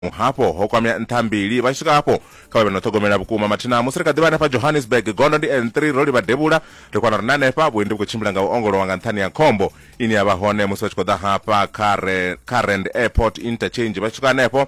Vhadzimu hafho ho kwamea nṱha mbili. Vha tshi swika hafho, kha vha vhe no ṱhogomela vhukuma mathina musi ri kha ḓi vha hanefha Johannesburg. Gondo ndi N3, ro livha devhula, ri kwana uri na hanefha vhuendi vhu khou tshimbila nga u ongolowa nga nṱhani ha khombo ine ya vha hone musi vha tshi khou ḓa hafha kha re, kha Rand Airport Interchange. Vha tshi swika hanefho,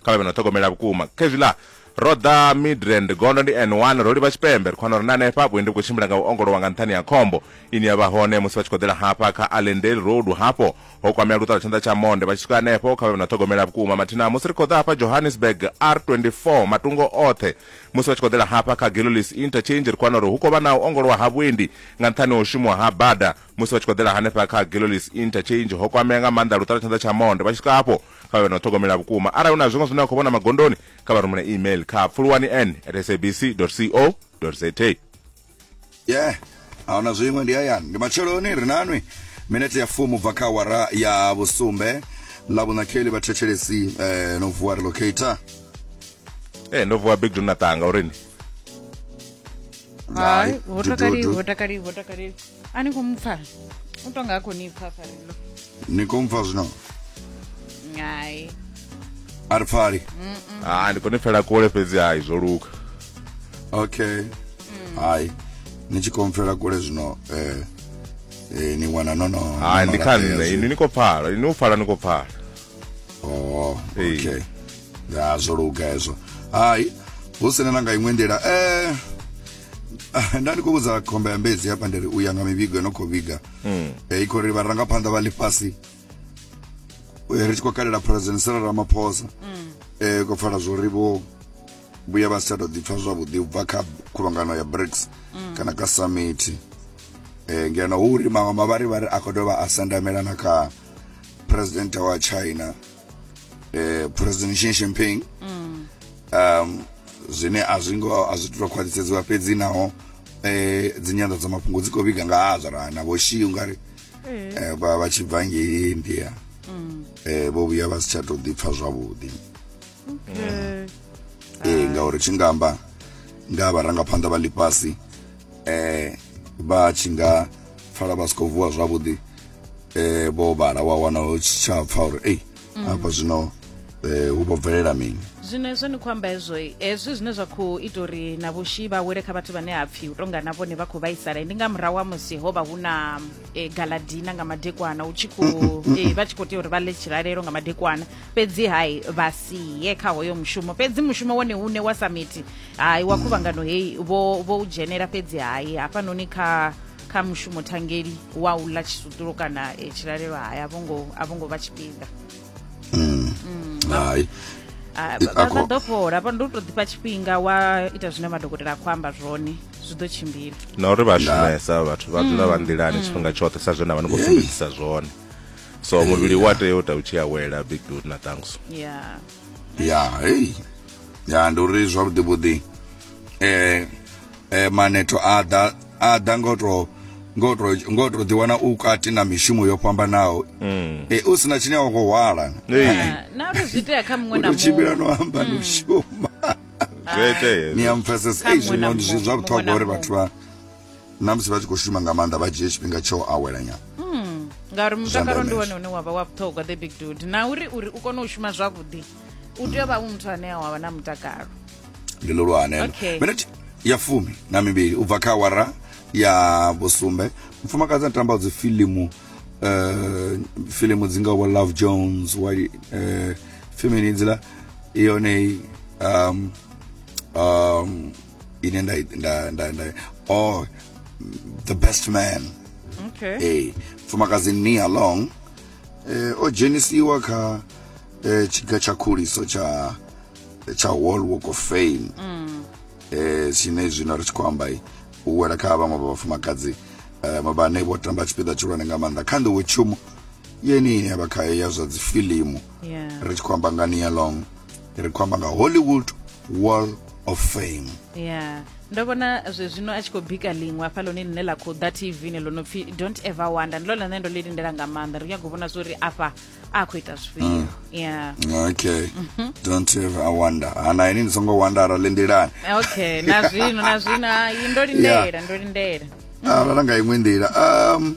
kha vha vhe no ṱhogomela vhukuma. Khezwiḽa ro ḓa Midrand, gondo ndi N1, ro livha tshipembe, ri kwana uri na hanefha vhuendi vhu khou tshimbila nga u ongolowa nga nṱhani ha khombo ine ya vha hone musi vha tshi khou ḓela hafha kha Allendale Road. Hafho ho kwamea luṱalatshanḓa tsha monde vha tshi swika hanefho kha vhe na ṱhogomela vhukuma mathina musi ri khou ḓa hafha johannesburg r24 matungo oṱhe musi vha tshi khou ḓela hafha kha galilis interchange ri khou wana uri hu khou vha na u ongolowa ha vhuendi nga nṱhani ha u shumiwa ha bada musi vha tshi khou ḓela hanefha kha galilis interchange ho kwamea nga maanḓa luṱalatshanḓa tsha monde vha tshi swika hafho kha vhe na ṱhogomela vhukuma arali hu na zwiṅwe zwine vha khou vhona magondoni kha vha rumele email kha pfuluwani n at sabc co za yeah aona zwiṅwe ndi hayani ndi matsheloni ri nanwi minete ya fumu bva kha awara ya vhusumbe ḽa vhunakheli vhathetshelesi eh, no vuwa relocator Eh ndo vuwa big donatanga uri ni Hai, Hai, vho takali, dududu. vho takali, vho takali. a ni khou mu pfa u to nga a khou ni pfa farelo ni khou mu pfa zwino ngai a ri pfali ha ndi khou ni pfela kule fhedzi hai zwo luka okay mm. hai ni tshi khou mpfela kule zwino eh, eh, ni wana no no hai ndi kha nṋe ini ni khou pfala ini u pfala ni khou pfala oh okay ya zwo luka hezwo hai hu sina na nga iṅwe nḓila eh Ah, nda ndi khou vhudza khomba ya mbedzi hafha ndi ri u ya nga mivhigo no khou vhiga mm. eh, i khou ri vharangaphanḓa vha ḽifhasi eh, ri tshi khou kalela president sara ramaphosa mm. eh, khou pfala zwo ri vho vhuya vha si tsha tou ḓipfa zwavhuḓi u bva kha khuvhangano ya brics mm. kana ka summit eh, ngeno hu uri maṅwe mavharivhari a khou dovha a sendamela na kha president wa china eh, president Xi Jinping um, zwine a zwi ngo a zwi tou khwaṱhisedziwa fhedzi naho eh, dzi nyanḓadzamafhungo dzi khou vhiga nga ha zwa na vho Xi ungari eh, vha vha tshi bva ngei India eh, vho vhuya vha si tsha tou ḓipfa zwavhuḓi eh, ngauri tshi nga amba nga vharangaphanḓa vha ḽifhasi eh vha tshi nga pfala vha si khou vuwa zwavhuḓi eh vho vhala wa wana hu tshi tsha pfa uri ei mm. hafha zwino eh hu vho bvelela mini zwino hezwo ni khou amba hezwo hezwi zwine zwa khou ita uri na vhushi vha wele kha vhathu vhane ha pfhi u tonga na vhone vha khou vhaisala ndi nga murahu wa musi ho vha hu na eh, galadina nga madekwana hu tshi khou eh, vha tshi khou tea uri vha ḽe tshilalelo nga madekwana fhedzi hai vha siye kha hoyo mushumo fhedzi mushumo wone une wa samiti hai wa khuvhangano heyi vho vho u dzhenela fhedzi hai hafhanoni kha kha mushumo thangeli wa u ḽa tshisutulu kana e, tshilalelo hai a vho ngo a vho ngo vha tshifhinga hai Ah, vha vha Akho- ḓo fhola vha ndo tou ḓifha tshifhinga wa ita zwine madokotela a khou amba zwone zwi ḓo tshimbila na uri vha shumesa vhathu vha dzula vha nḓilani tshifhinga tshoṱhe sa zwe na vha ni khou sumbedzisa zwone so muvhili wa tea u ta u tshi awela big dude na thanks yeah ya hey ya ndi uri zwavhuḓi vhuḓi eh eh manetho a ḓa a ḓa ngo to ngo to ngo to ḓi wana u kati na mishumo yo fhambanaho mm. eh u sina tshine wa khou hwala na uri zwi tea kha muṅwe na muṅwe tshimbila no amba no mm. shuma zwi itea ni amphasisa ei zwino zwi zwa vhuṱhogwa uri vhathu vha na musi vha tshi khou shuma nga maanḓa vha dzhie tshifhinga tsho awela nyana hmm, ngauri mutakalo ndi wone une wavha wa vhuṱhogwa the big dude na uri uri u kone u shuma zwavhuḓi u tea u vha u muthu ane a wavha na mutakalo ndi lulwanelo okay. minute ya fumi na mivhili u bva kha awara ya vhusumbe mufumakadzi a tamba dzi filimu uh, eh, filimu dzi ngaho love jones wa uh, eh, fimini idzila yone um, um, ine nda nda nda, nda oh the best man okay hey eh, mfumakadzi nia long eh, o dzhenisiwa kha eh, tshiga tsha khuliso tsha tsha world walk of fame mm. eh, tshine zwino ri tshi khou amba u wela kha vhaṅwe vha vhafumakadzi um eh, vhane vho tamba tshipiḓa tshihulwane nga maanḓa kha nḓiwe tshumo yeni ya vha khayo ya zwa dzifilimu ri tshi khou amba nga nia long ri khou amba nga hollywood wall of fame yeah ndo vhona zwe zwino a tshi khou bika ḽiṅwe hafha ḽone ḽine ḽa khou ḓa tv ne ḽo no pfhi don't ever wonder ndi ḽone ḽine ndo ḽi lindela nga maanḓa ri nyago vhona zwori afha a khou ita zwifhio mm. yeah okay mhm. don't ever wonder ana ah, ini ndi songo wondera lindelani okay na zwino na zwino ndo lindela ndo lindela ara ah, nga iṅwe nḓila um